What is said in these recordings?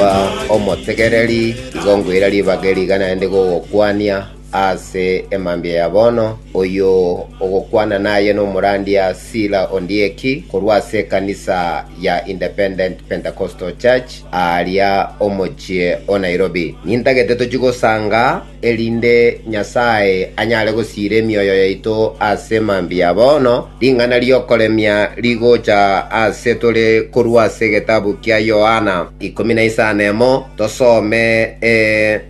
Inaba omotegereri, igo ngweira ribaga eriga naende gogokwania aase emambia ya bono. Oyio ogokwana naye nomorandia Sila Ondieki korwa ase ekanisa ya Independent Pentecostal Church aaria omochie o Nairobi. Nintagete tochie gosanga erinde Nyasae anyare gosiira emioyo yaito ase mambia bono, ring'ana ri'okoremia rigocha ase tore korwa ase egetabu kia Yohana ikomi na isano emo, tosome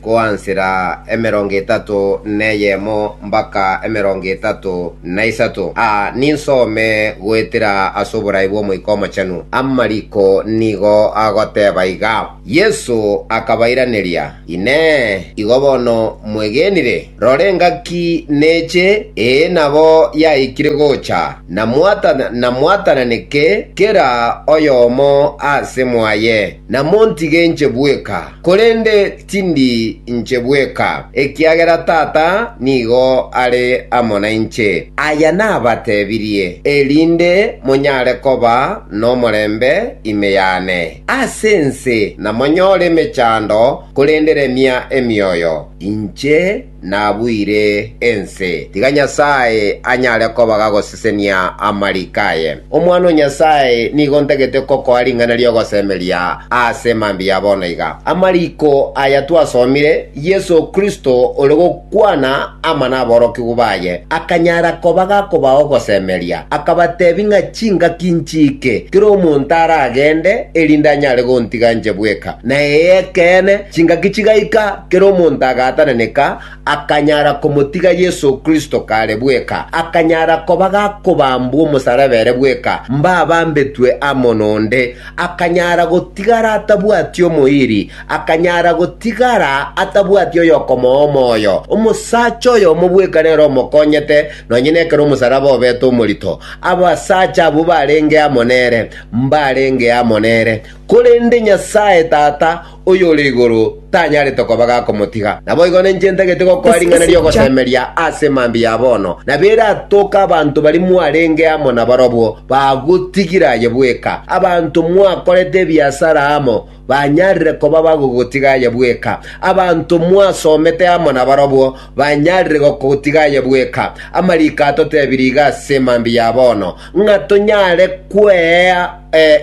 koansera emerongo etato neyemo mbaka emerongo etato na isato. Aa ninsome goetera ase oborai bw'Omoika Omochenu. Amariko nigo agoteba iga. Yeso akabairaneria, Inee! Igo bono mwegenire? Rora engaki neche, ee nabo yaikire gocha, na mwatana, na mwatananeke kera oyomo ase mwaye, na montige inche bweka, korende tindi inche bweka, ekiagera Tata nigo are amo nainche. Aya nabatebirie, erinde monyare koba nomorembe ime yane. Ase ense namonyore emechando, korende remia emioyo! Inche nabuire ense. Tiga Nyasae anyare koba gagosesenia amariko aye. Omwana o Nyasae nigo ntagete kokoa ring'ana ri'ogosemeria ase mambia ya bono iga. Amariko aya twasomire, Yeso Kristo ore Kwana amo naborokigwa baye, akanyara koba gakobao ogosemeria, akabateebia ng'a chingaki nchiike, kera omonto aragende, erinde anyare gontiga inche bweka. Na ee, ekeene, chingaki chigaika, kera omonto agaatananeka, akanyara komotiga Yeso Kristo kare bweka, akanyara koba gakobambwa omosaraba ere bweka, mbabambetwe amo nonde, akanyara gotigara atabwati omoiri, Akanyara gotigara atabwati oyokomoa omoyo, omosacha oyomo bweka nere omokonyete, nonye nekero omosaraba obete omorito, abasacha abwo barenge amo nere, mbarenge amo nere. Korende Nyasae Tata oyore igoro tanyarete koba gakomotiga. Naboigo ninche ntagete gokoa ring'ana ri'ogosemeria ase emambia ya bono, na beratoke abanto baria mwarenge amo nabarobwo, bagotigira aye bweka, abanto mwakorete ebiasara amo, banyarire koba bagogotiga aye bweka. Abanto mwasomete amo nabarobwo banyarire gokotiga aye bweka. Amariko atotebirie iga ase mambia ya bono, ng'a tonyare kwea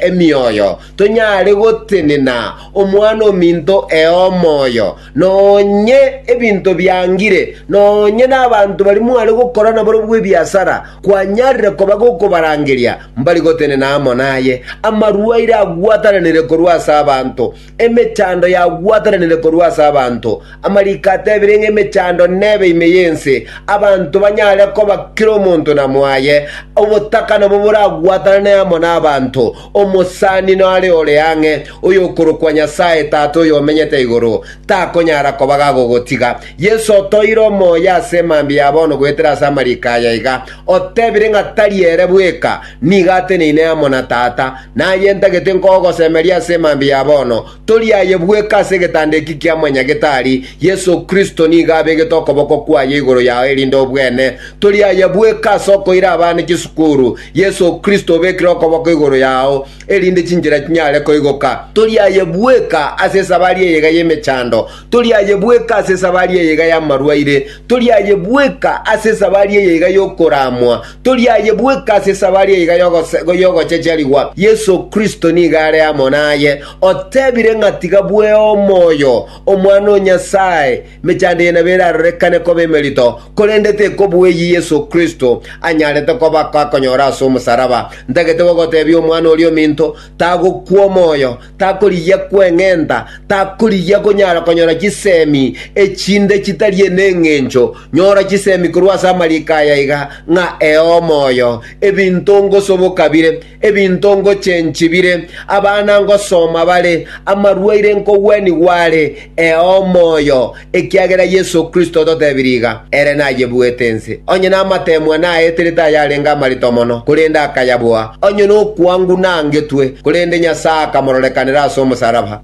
emioyo, tonyare gotenena omwana ominto ee omoyo, Nonye ebinto biangire, nonye nabanto baria mware gokora nabarabwo ebiasara, kwanyarire koba gokobarangeria mbari gotenena amo naye. Amarwaire agwataranire korwa ase abanto, emechando yagwataranire korwa ase abanto. Amariko atebire ng'a emechando nebe ime y'ense, abanto banyare koba kera omonto na mwaye, obotaka nabo boragwatanane amo nabanto, Omosani nore ore ang'e, oyokorokwa Nyasae Tata oyomenyete igoro, takonyara koba gagogotiga. Yeso otoeire omoyo ase mambia ya bono goetera ase amariiko aya iga, otebire ng'a tari ere bweka nigo ateneine amo na Tata, naye ntagete nkogosemeria ase mambia ya bono, Tori aye bweka ase egetanda eki kia Mwanyagetari, Yeso Kristo nigo abegete okoboko kwaye igoro yao erinde obwene tori aye bweka ase okoira abana chisukuru. Yeso Kristo obekire okoboko igoro yao erinde chinchera chinyare koigoka. Tori aye bweka ase esabari eyega y'emechando. Toriaye bweka ase esabari eye iga y'amarwaire, toriaye bweka ase esabari eye iga y'okoramwa, toriaye bweka ase esabari eye iga y'ogochacharigwa, Yeso Kristo nigo are amo naye, otebire ng'a tiga bweo omoyo Omwana o Nyasae, emechando eye nabo erarorekane koba emerito, korende tekobua eyio Yeso Kristo anyarete koba akonyora ase omosaraba. Ntagete gogotebia omwana oria ominto tagokwa omoyo, takorigia kweng'enta, takorigia konyara konyora chisemi echinde chitari n'engencho. Nyora chisemi korwa ase amariko aya iga, ng'a ee omoyo, ebinto ngosoboka bire, ebinto ngochenchi bire, abana ngosoma bare, amarwaire nkogwenigwa are, ee omoyo, Ekiagera Yeso Kristo ototebirie iga, Ere nayebuete ense, onye namateemwa naeterete ayarenge amarito mono, korende akayaboa, onye nokwanguna angetwe, korende Nyasae akamororekanera ase omosaraba.